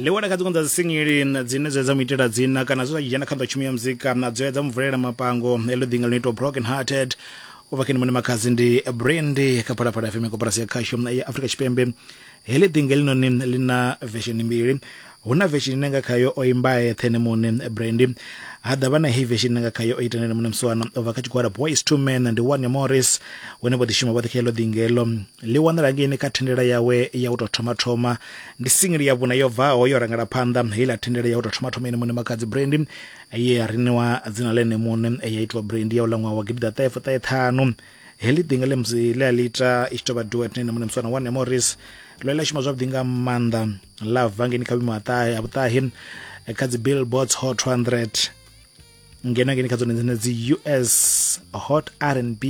ḽiwana kha dziṅwe dza dzisingili dzine dza dza mu itela dzina kana zwe zwa dzhena kha nḓa tshumelo ya muzika na dzo ya dza mu vulela mapango heḽo ḓinga ḽino itwa broken hearted u bva khe ni mone makhadzi ndi brandi kha phalaphala fm koporasi ya khasho ya afrika tshipembe heḽi ḓinga elinoni ḽi na vesheni mbili hu na veshini ine nga khayo o imba eṱhe ene muṋe brandy ha ḓavha na heyi veshini ine nga khayo o ita ene muṋe musiwana o bva kha tshigwada boys two men ndi wane morris hune vho ḓishuma vhoṱhe kha ilo ḓingelo ḽi wanala ngeini kha thendela yawe ya u tou thoma thoma ndi singili ya vhuna yo bvaho yo rangela phanḓa heiḽa thendela ya u tou thoma thoma ene muṋe makhadzi brandy ye ya riniwa dzina ḽa ene muṋe ya itiwa brandy ya u ḽa ṅwaha wa gidiḓaṱahefuṱaheṱhanu heḽi ḓinga ḽe musi ḽe a ḽi ita i tshi tou vha duet na ene muṋe muswana wa nemoris ḽo ḽa shuma zwavhuḓi nga maanḓa ḽa bva ngeni kha vhuimo ha vhuṱahi kha dzi billboards hot 200 ngeno ngeni kha dzone dzine dzi us hot r and b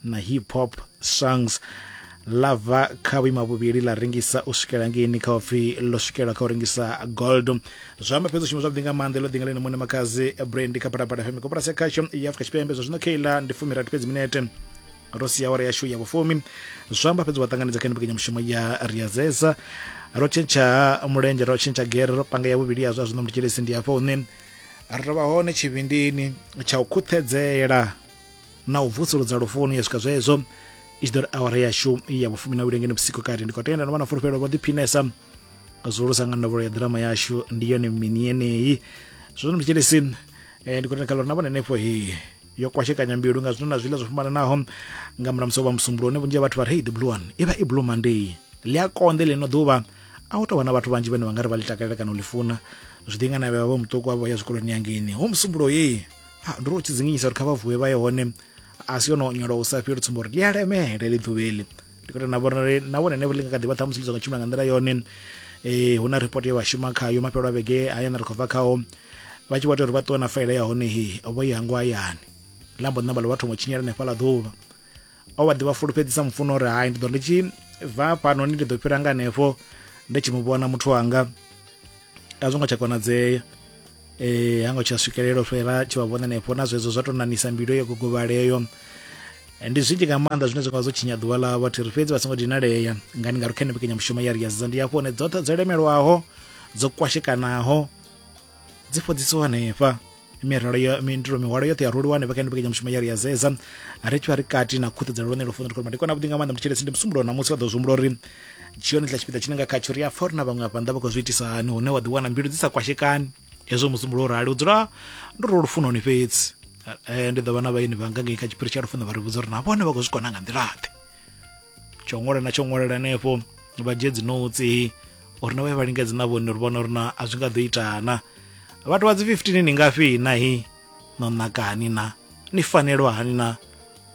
na hip hop songs ḽa bva kha vhuima vhuvhili ḽa rengisa u swikela ngeini kha upfi ḽo swikela kha u rengisa gold zwi amba fhedzi u shuma zwavhuḓi nga maanḓa ḽo ḓi nga ḽine muṋe makhadzi brand kha phalaphala fm koporasi ya khasho ya afrika tshipembe zwa zwino kha iḽa ndi fumirathi fhedzi minete ro sia awara yashu ya vhufumi zwi amba fhedzi wa ṱanganedza kha mbekanyamushumo ya riazesa ro tshentsha mulenzhe ro tshentsha gere ro panga ya vhuvhili ya zwa zwino mutshilisi ndi hafha hune ri tovha hone tshivhindini tsha u khuṱhedzela na u vusuludza lufuni ya swika zwezwo i tshi ḓo ri awara yashu ya vhufumi na ulengeni vhusiku kati ndi khou tenda no vha na fulufhelo vho ḓiphinesa zwihulusa nga ndavhulo ya ḓirama yashu ndi yone mini yeneyi zwino mtshelesi um eh, ndi khou tenda kha lori na vhone henefho he yo kwashekanya mbilu nga zwino na zwiḽa zwo fhambananaho nga murahu musi vha musumbulo une vhunzhi ha vhathu vha ri hey the blue one i vha i blue monday ḽi a konḓe ḽino ḓuvha a u tou vha na vhathu vhanzhi vhane vha nga ri vha ḽi takalela kana u ḽi funa zwi ḓi nga na vhevha vho muṱuku avho ya zwikoloni yangeni hu musumbulo yeyi ha ndi ri u tshi dzinginyisa uri kha vha vuwe vha ye hone a si yono nyolo u sa fheli tsumbo uri ḽi a lemele ḽi ḓuvheli ndi khou na vhona uri na vhone never ḽi nga kha ḓi vha ṱhamusi ḽi songo tshimbila nga nḓila yone eh hu na report ye vha shuma khayo mafhelo a vhege hayani ri khou bva khao vha tshi vho tea uri vha ṱuwe na faela ya hone he vho i hangwa hayani lambo ṋamba ḽo vha thoma u tshinyela hanefhaḽa ḓuvha o vha ḓi vha fulufhedzisa mufuno uri hai ndi ḓo ndi tshi bva fhanoni ndi ḓo fhira nga hanefho ndi tshi mu vhona muthu wanga a zwo ngo tsha konadzea eh ha ngo tsha swikelela fhela tshi vha vhona hanefho na zwezwo zwa tou nanisa mbilu yo gogovhaleyo ndi zwinzhi nga maanḓa zwine zwa nga zwo tshinya ḓuvha ḽa vhathu ri fhedzi vha songo dinalea ngani nga ri khene mbekanyamushumo ya ri ya zidza ndi hafho hone dzoṱhe dzo lemelwaho dzo kwashekanaho dzi fhodzisiwa hanefha miralo yo mindulo mihwalo yoṱhe ya roliwa hanefha kha ndi vhekanya mushumo ya ri ya zeza ri tshi vha ri kati na khuṱedzelo lone lufuno ri khou ndi kona vhuḓi nga maanḓa muthu tshelesi ndi musumbulo na musi vha ḓo zwihumbula uri tshione tla tshipiḓa tshine nga khatsho ri a fa uri na vhaṅwe afha nnḓa vha khou zwi itisa hani hune wa ḓiwana mbilu dzi sa kwashekani hezwo musumbulo u rali u dzula ndo ro lufunoni fhedzi ndi ḓo vha na vhaeni vhanga ngei kha tshiphiri tsha lufuno vha ri vhudza uri na vhone vha khou zwi kona nga nḓilaḓe tsho ṅwala na tsho ṅwalela hanefho vha dzhie dzi notsi uri na vhaye vha lingedze na vhone uri vhona uri na a zwi nga ḓo itana vhathu vha dzi 15 ni ngafhi nahi no naka hani na ni fanelwa hani na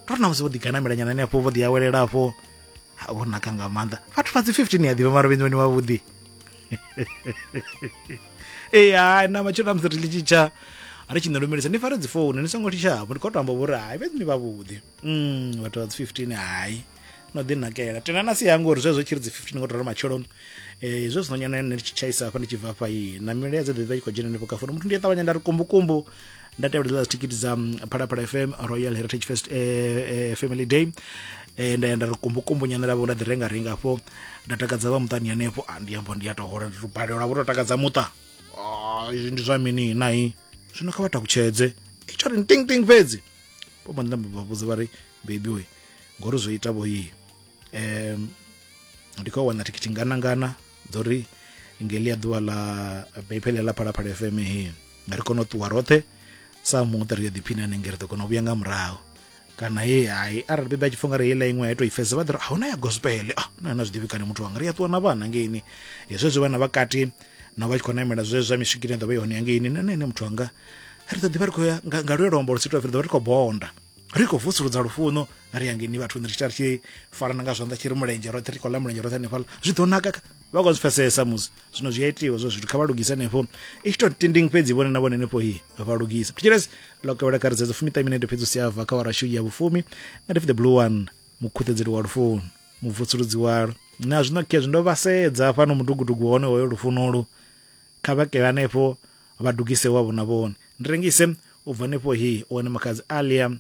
tori na musi vho ḓiganamelanyana hanefho vho ḓiawelela afho vho naka nga maanḓa vhathu vha dzi 15 ya ḓivha mara vhenzi vhone vhavhuḓi ee hai na matshelo na musi ri ḽi tshitsha ri tshi ni lumelisa ni fare dzi founu ni songo thishavho ndi khou to amba vhori hai vhenzi ni vhavhuḓi mm, vhathu vha dzi 15 hayi no ḓi nakela tena na si yango uri zwezwo tshi ri dzi 15 ngo tora matsheloni eh zwe zwino nyana ne tshi tshaisa hafha ndi tshi bva hafha yi na mile dze ḓe kho dzhena nepo kafuna muthu ndi ṱavhanya nda ri kumbu kumbu nda tevhela dzi ticket dza mm, phalaphala FM Royal Heritage Fest eh, eh, Family Day eh nda yenda ri kumbu kumbu nyana lavo nda ḓi renga renga afho nda takadza vha muṱani hanefho a ah, ndi ambo ndi ya to hola ndi balelwa vho to takadza muṱa ah ndi zwa mini nayi zwino kha vha takutshedze i tsho ri ting ting fhedzi vho mbo ḓi namba vha vhudza vha ri bebi we ngori zwo ita vhoyi um ndi khou wana thikhithi nganangana dzo ri ngeli ya ḓuvha ḽa bephele ḽa phalaphala fm he nga ri kone u ṱuwa roṱhe sa muṱa ri yo ḓiphina hanenge ri ḓo kona u vhuya nga murahu kana he hai arali bebi a tshi pfha nga ri heiḽa iṅwe ya tou i fhedza vha ḓi ri ahuna ya gospel ah na na zwiḓivhi kani muthu wanga ri a ṱuwa na vhana ngeini hezwo zwi vhana vhakati na vha tshi khou namela zwezwo zwa miswikini ya ḓovha i hone ya ngeini na nṋe ene muthu wanga ri ḓo ḓivha ri khou ya nga luye luambo lu sitwa ri ḓovha ri khou bonda ri khou vusuludza lufuno ri ya ngeni vhathuni ri tshi ri tshi farana nga zwanḓa tshi ri mulenzhe roṱhe ri khou ḽa mulenzhe roṱhe hanefhaḽa zwi ḓo naka vha khou zwi pfesesa musi zwino zwi a itiwa zwo zwithu kha vha lugise hanefho i tshi to tinding fhedzi vhone na vhone hanefho hi vha lugisa thetshelesi ḽo kevhela kha ri dzedzo fumiṱa minete fhedzi u si ava kha warashu ya vhufumi nga ndi the blue one mukhuṱedzeli wa lufuno muvusuludzi walo na zwino khezwi ndo vha sedza fhano mudugudugu hone hoyo lufunolu kha vha kele hanefho Vha dugise wavho na vhone. Ndi rengise u bva nefho hi u wane makhadzi Alia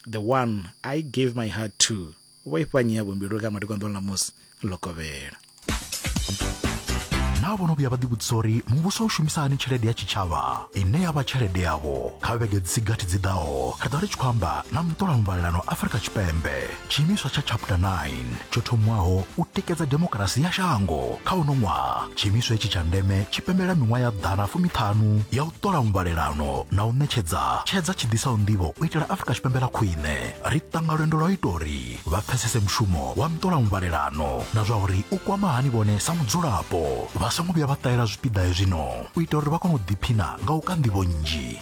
the one I gave my heart to. Vho ifha nyi yavho mbilu kha madekwa nḓuni ḽa musi ḽo kovhela. Naa vho no vhuya vha ḓivhudzisa uri muvhuso u shumisa hani tshelede ya tshitshavha ine ya vha tshelede yavho? Kha vhege dzi si gathi dzi ḓaho, ri ḓo vha ri tshi khou amba na muṱolamuvhalelano Afrika Tshipembe. tshiimiswa tsha chapter 9 tsho thomwaho u tikedza demokirasi ya shango kha uno ṅwaha tshiimiswa itshi tsha ndeme tshi pembelela miṅwaha ya ḓana fumiṱhanu ya u ṱola muvhalelano na u ṋetshedza tshedza tshi ḓisaho nḓivho u itela afurika tshipembe ḽa khwine ri ṱanga lwendo lwa u ita uri vha pfesese mushumo wa muṱola muvhalelano na zwa uri u kwama hani vhone sa mudzulapo vha songo vhuya vha ṱahela zwipiḓa hezwino u ita uri vha kone u ḓiphina nga u ka nḓivho nnzhi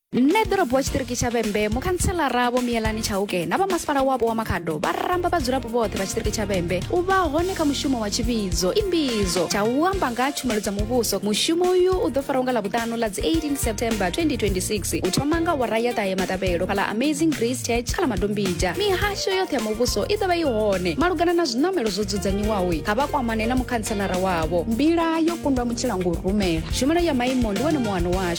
nṋe ḓorobo wa tshiṱiriki tsha vhembe mukhanselara vho miyelani tshauke na vha masipala wapo wa makhado vha ramba vhadzulapo vhoṱhe vha tshiṱiriki tsha vhembe u vha hone kha mushumo wa tshivhidzo imbidzo tsha u amba nga tshumelo dza muvhuso mushumo uyu u ḓo faraho nga ḽavhuṱanu ḽa dzi 18 september 2026 u thoma nga wara ya ṱahe matabelo fhala amazing grace church kha ḽa madombija mihasho yoṱhe ya muvhuso i ḓo vha i hone malugana na zwiṋamelo zwo dzudzanyiwaho kha vha kwamane na mukhanselara wavho mbila yo kundwa mutshila ngo rumela tshumelo ya maimo ndi wone muwano washu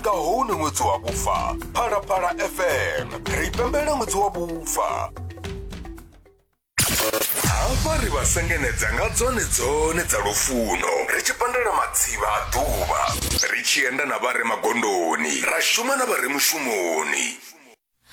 nga hone ṅwedzi wa vhufa phalaphala fm ri pembela ṅwedzi wa vhufa hafha ri vha sengenedza nga dzone dzone dza lufuno ri tshi pandela matsivha a ḓuvha ri tshi enda na vha re magondoni ra shuma na vha re mushumoni